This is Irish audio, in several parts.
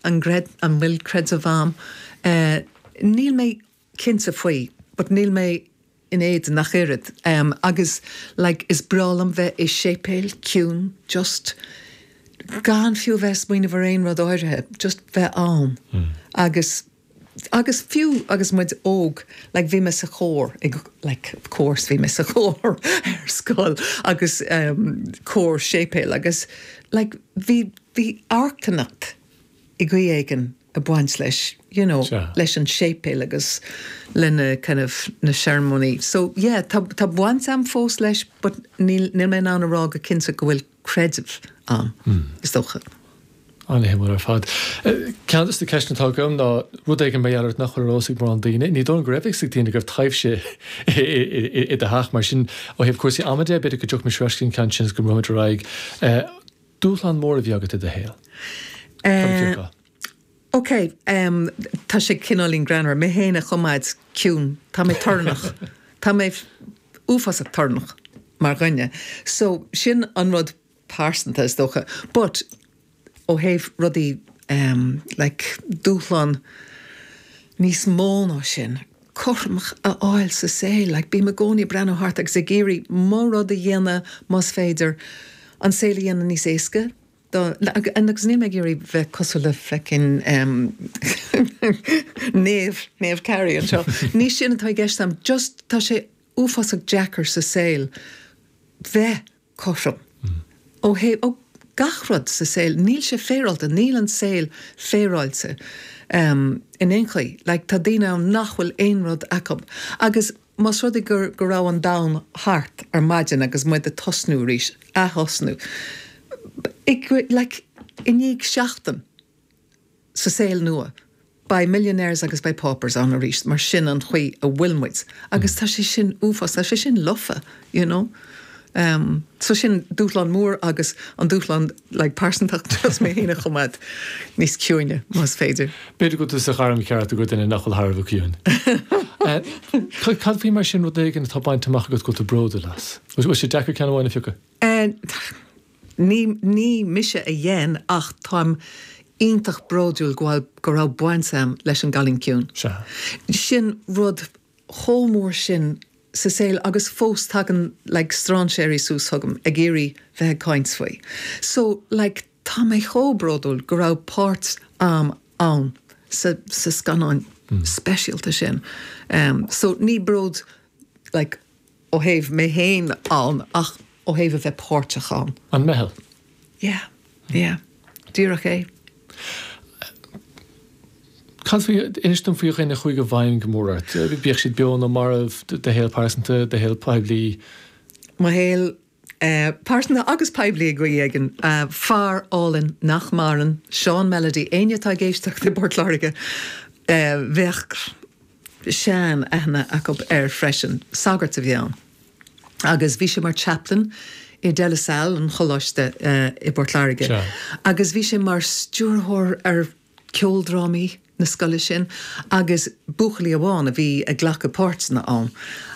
an gcreid, an bhfuil creideamh agam? Eh níl mé cinnte faoi but níl mé in éadan ach oiread em agus like is breá liom bheith i séipéil, ciúin, just gan fiú a bheith ag smaoineamh ar aon rud áirithe, just bheith ann. Agus. Agus fiú agus muid óg, like bhí mé sa chór, ag, like of course bhí mé sa chór ar scoil agus ehm cór séipéil agus like bhí, bhí draíocht i gcaoi éigin ag baint leis you know Sea. leis an séipéal agus le na kind of na searmanais so yeah tá, tá baint a'm fós leis but níl, níl mé in ann a rá go cinnte go bhfuil creideamh a'm, is dócha. An-suimiúil ar fad. Ceann de na ceisteanna atá agam ná rud éigin mar gheall ort nach bhfuil ar eolas ag mórán daoine. Ní dóigh liom go raibh a fhios ag daoine go raibh taibhse i do theach. Mar sin, ó thaobh cúrsaí ama de, b'fhéidir go dtiocfaimis ar ais go dtí an ceann sin agus go mbrúimis ar aghaidh. Dúshlán mór a bhí agat i do shaol. Cad a d'fhreagair tú? OK, tá sé cineáilín greannmhar mé féin a choimeád ciúin. Tá mé torannach. Tá mé uafásach torannach mar dhuine. So, sin an rud pearsanta, is dócha. But, ó thaobh rudaí ehm, like, dúshlán níos mó ná sin, cothromas a fháil sa saol, like, bím i gcónaí ag breathnú thart agus ag iarraidh mo rud a dhéanamh, más féidir, an saol a dhéanamh níos éasca dóibh agus níl mé ag iarraidh bheith cosúil le feckin Naomh Naomh Carrie anseo, ní sin atá i gceist a'm, just tá sé uafásach deacair sa saol bheith cothrom ó, ó gach rud sa saol, níl sé féaráilte, níl an saol féaráilte in aon chaoi, like tá daoine ann nach bhfuil aon rud acu agus. Más rud é go raibh an domhan thart ar maidin agus muid ag tosnú arís, ath-thosnú, ag, like, i ndiaidh seachtain sa saol nua, beidh millionaires agus beidh paupers ann arís, mar sin an chaoi a bhfuil muid. Agus tá sé sin uafásach, tá sé sin lofa. you know. So sin dúshlán mór agus an dúshlán like pearsantach just mé féin a choimeád níos ciúine más féidir. B'fhéidir go bhfuil tú sa ghairm cheart más duine thú nach bhfuil thar a bheith ciúin. Cad faoi mar sin rud éigin atá bainte amach agat go bhfuil tú bródúil as? Bhfuil sé deacair ceann amháin a phiocadh? Ní mise a dhein é ach táim iontach bródúil go bhfuil, go raibh baint agam leis an gCailín Ciúin. Sin rud chomh mór sin sa saol agus fós tagann like stráinséirí suas chugam ag iarraidh bheith ag caint faoi so like tá mé chomh bródúil go raibh páirt a'm ann sa scannán speisialta sin ehm so ní bród like ó thaobh mé féin ann ach ó thaobh a bheith páirteach ann. An meitheal? Yeah, yeah. Díreach é. Cad faoi, inis dom faoi dhuine a chuaigh i bhfeidhm go mór ort, bíodh siad beo nó marbh, do shaol pearsanta, do shaol poiblí? Mo shaol pearsanta agus poiblí ag i gcaoi éigin, fear álainn nach maireann, Seán Melody, éinne atá ag éisteacht i bPort Láirge bheadh sean aithne acu air freisin. Sagart a bhí ann agus bhí sé mar Chaplain i De La Salle, an choláiste i bPort Láirge, agus bhí sé mar stiúrthóir ar ceoldrámaí na scoile sin agus buachaillí amháin a bhí ag glacadh páirteanna ann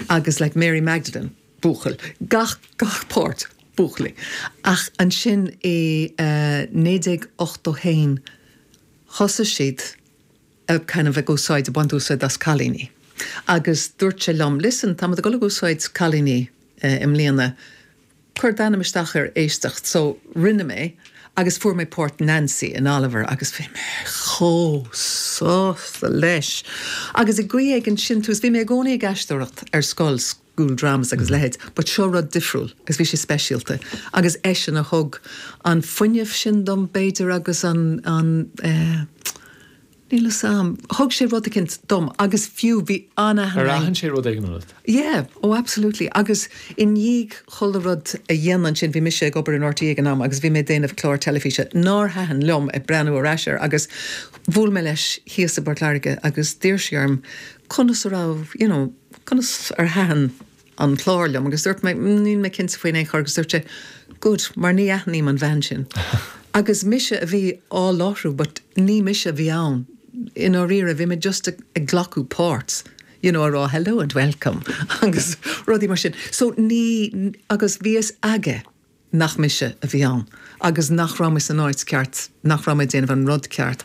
agus like Mary Magdalene, buachaill, gach, gach páirt, buachaillí. Ach ansin i eh 1981 thosaigh siad a kind of ag úsáid, ag baint úsáid as cailíní agus dúirt sé liom, listen, táimid ag dul ag úsáid cailíní i mbliana, Cuir d'ainm isteach ar éisteacht. So, rinne mé agus fuair mé páirt Nancy in Oliver! Agus bhí mé chomh sásta leis! Agus i gcaoi éigin sin tús, bhí mé i gcónaí ag aisteoireacht ar scoil, school dramas agus a leithéid, but seo rud difriúil agus bhí sé speisialta. Agus eisean a thug an fuinneamh sin dom, b'fhéidir, agus an, an eh, Níl 'fhios a'm. Thug sé rud eicint dom agus fiú bhí an-aithne Ar aithin sé rud éigin ionat? Yeah, oh absolutely. Agus i ndiaidh chuile rud a dhéanamh ansin, bhí mise ag obair in RTÉ ag an am agus bhí mé ag déanamh clár teilifíse nár thaitin liom, ag breathnú ar ais air, agus bhuail mé leis thíos i bPort Láirge agus d'iarr sé orm conas a raibh, you know, conas ar thaitin. an clár liom agus dúirt mé, níl mé cinnte faoi in aon chor agus dúirt sé, good, mar ní aithním an bhean sin. Agus mise a bhí á láithriú but ní mise a bhí ann i ndáiríre, bhí mé just ag glacadh páirt you know a rá hello and welcome agus rudaí mar sin so ní, agus bhí fhios aige nach mise a bhí ann agus nach raibh mé san áit ceart, nach raibh mé ag déanamh an rud ceart.